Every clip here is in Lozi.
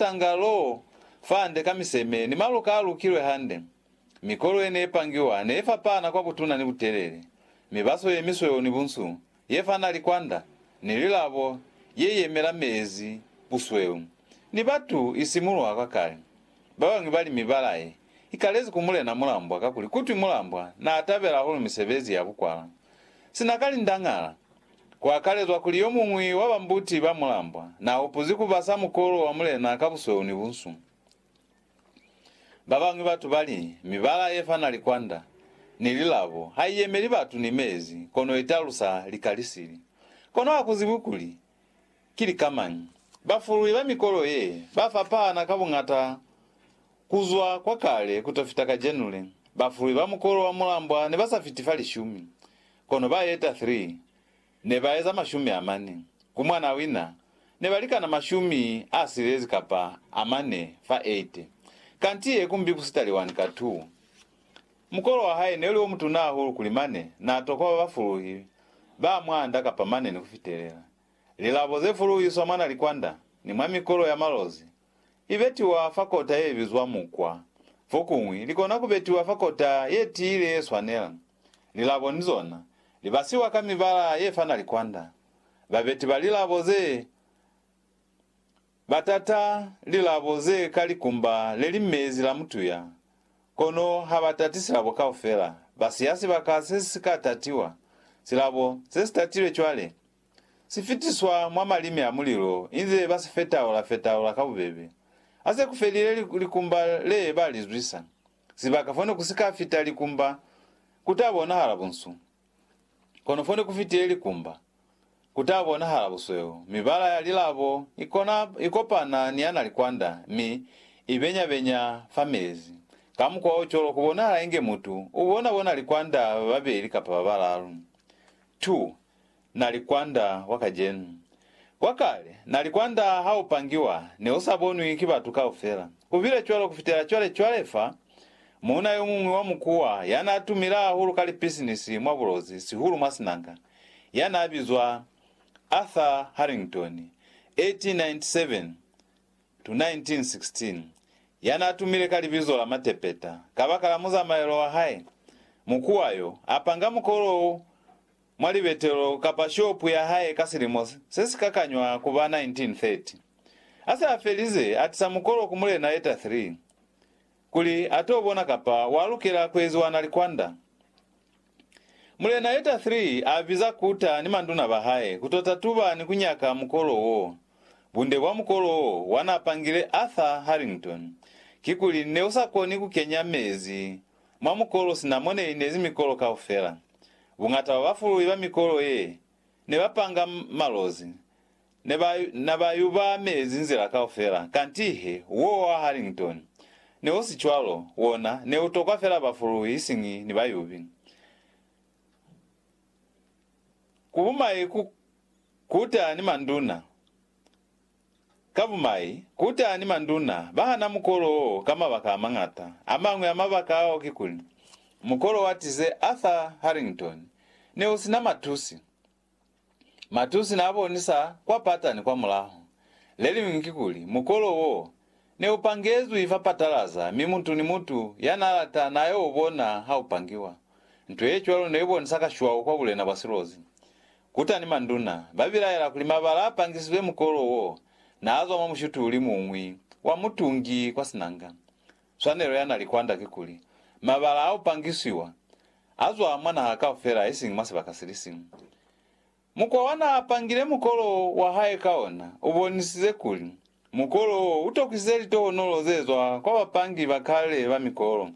tanga loo fande ka miseme ni maluka a lukilwe hande. Mikolo ye ne i pangiwa ne i fapana kwa butuna ni butelele, mibaso ye misweu ni bunsu, ye fana likwanda, ni lilabo ye yemela meezi, busweu, ni batu i simulwa kwa kale. Ba bañwi ba li mibala ye i kalezi ku Mulena Mulambwa kakuli kutwi Mulambwa naa tabela hahulu misebezi ya bukwala sina ka lindañala. kuakalezwa kuli yomuñwi wa bambuti ba mulambwa naahupuzi kubasa mukolo wa mulena ka busweu ni bunsu. Babañwi batu bali, Mibala yefana likwanda ni lilabo haiyemeli batu ni meezi, kono italusa lika lisili. Kono hakuzibwi kuli ki lika mañi. Bafulwi ba mikolo ye bafapahana ka buñata kuzwa kwakale kutofita kajenule. Bafulwi ba mukolo wa mulambwa nebasafiti fa lishumi. Kono ba yeta 3 ne ba eza mashumi amane, ku mwana wina ne ba likana mashumi a silezi kapa amane fa 8. Kanti ye kumbi ku sitali wani ka 2. Mukolo wa hae ne uli o mutuna ahulu kuli mane na tokwa ba ba fuluhi ba mwa nda kapa mane ni ku fitelela. Lilabo ze fuluhiswa mwa na likwanda ni mwa mikolo ya malozi, li betiwa fa kota ye bizwa mukwa. Fokuñwi li kona ku betiwa fa kota ye tiile ye swanela. Lilabo ni zona li basiwa ka mibala ye fana likwanda. Babeti ba lilabo ze ba tata lilabo ze ka likumba le li mezi la mutuya, kono ha ba tati silabo kaufela. Ba siya sibaka se si ka tatiwa. Silabo se si tatilwe cwale si fitiswa mwa malimi a mulilo inze ba si fetaula-fetaula ka bubebe. Ha se ku felile likumba le ba li zwisa. Sibaka fone ku si ka fita likumba ku ta bonahala bunsu, kono fone ku fitile likumba, ku ta bonahala busweu. Mibala ya lilabo i kona i kopana ni ya na likwanda mi i benya-benya fa mezi. Ka mukwa o cwalo ku bonahala inge mutu u bona-bona likwanda ba babeli kapa ba balalu. 2. Na li kwanda wa kacenu. Kwa kale, na li kwanda ha u pangiwa, ne u sa bonwi ki batu kaufela. Ku bile cwalo ku fitela cwale. Cwale fa, muuna yo muñwi wa mukuwa, ya n'a tumile hahulu ka lipisinisi mwa bulozi, sihulu mwa sinanga, ya n'a bizwa Arthur Harrington, 1897-1916, ya n'a tumile ka libizo la Matepeta, kabakala muzamaelo wa hae, mukuwa yo, a panga mukolo wo mwa libetelo kapa shopu ya hae ka silimo se si ka kanywa ku ba 1930. A se a felize, a tisa mukolo ku Mulena Etta Three kuli a t'o bona kapa wa lukela ku eziwa na likwanda. Mulena Etta Three a biza Kuta ni manduna ba hae ku t'o tatuba ni ku nyaka mukolo wo. Bunde bwa mukolo wo wa n'a pangile Arthur Harrington ki kuli ne u sa koni ku kenya mezi mwa mukolo sina mo ne linezi mikolo kaufela. Buñata bwa bafululi ba mikolo ye ne ba panga malozi ne ba na ba yuba mezi nzila kaufela, kanti he wo wa Harrington ne u si cwalo, wona ne u tokwa fela bafululi isiñi ni bayubi. Ku bumai ku kuta ni manduna Ka bumai, kutani manduna bahana mukolo wo ka mabaka amañata. Amañwi a mabaka ao kikuli, mukolo wa tize Arthur Harrington ne u sina matusi. Matusi naabonisa kwa patani kwa mulaho. Leliñwi kikuli, mukolo wo Ne u pangezwi fa patalaza, mi mutu ni mutu ya n'a lata n'a y'o bona ha u pangiwa. Nto ye cwalo ne i bonisa ka shwau kwa bulena bwa silozi. Kuta ni manduna ba bilaela kuli mabala a pangisizwe mukolo w'o n'a zwa mwa mushutuli mu ñwi wa mutungi kwa sinanga. Swanelo ya na li kwand'a ki kuli, mabala a u pangisiwa a zwa mwa naha kaufela isiñi mwa sibaka si li siñwi. Mukwa wa n'a pangile mukolo wa hae ka ona u bonisize kuli mukolo wo u tokisize litohonolo ze zwa kwa bapangi ba kale ba mikolo.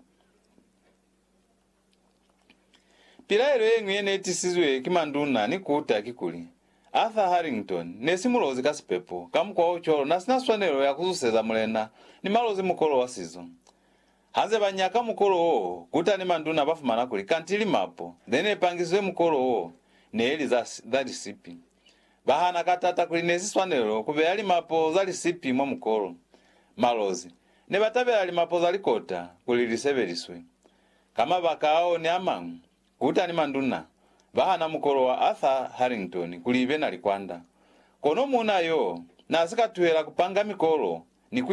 Pilaelo ye ñwi ye ne tisizwe ki manduna ni kuta kikuli, Arthur Harrington ne si mulozi ka sipepo, ka mukwa o cwalo n'a si na swanelo ya ku zuseza mulena ni malozi mukolo wa sizo. Hanze ba nyaka mukolo wo, kuta ni manduna ba fumana kuli kanti limapo le ne pangizwe mukolo wo ne li za, za lisipi. Ba hana ka tata kuli ne si swanelo ku beya limapo za lisipi mwa mukolo. Malozi, ne ba tabela limapo za likota kuli li sebeliswe. Ka mabaka ao ni a mañwi, kuta ni manduna ba hana mukolo wa Arthur Harrington kuli ibe na likwanda. Kono muuna yo n'a si ka tuhela ku panga mikolo ni ku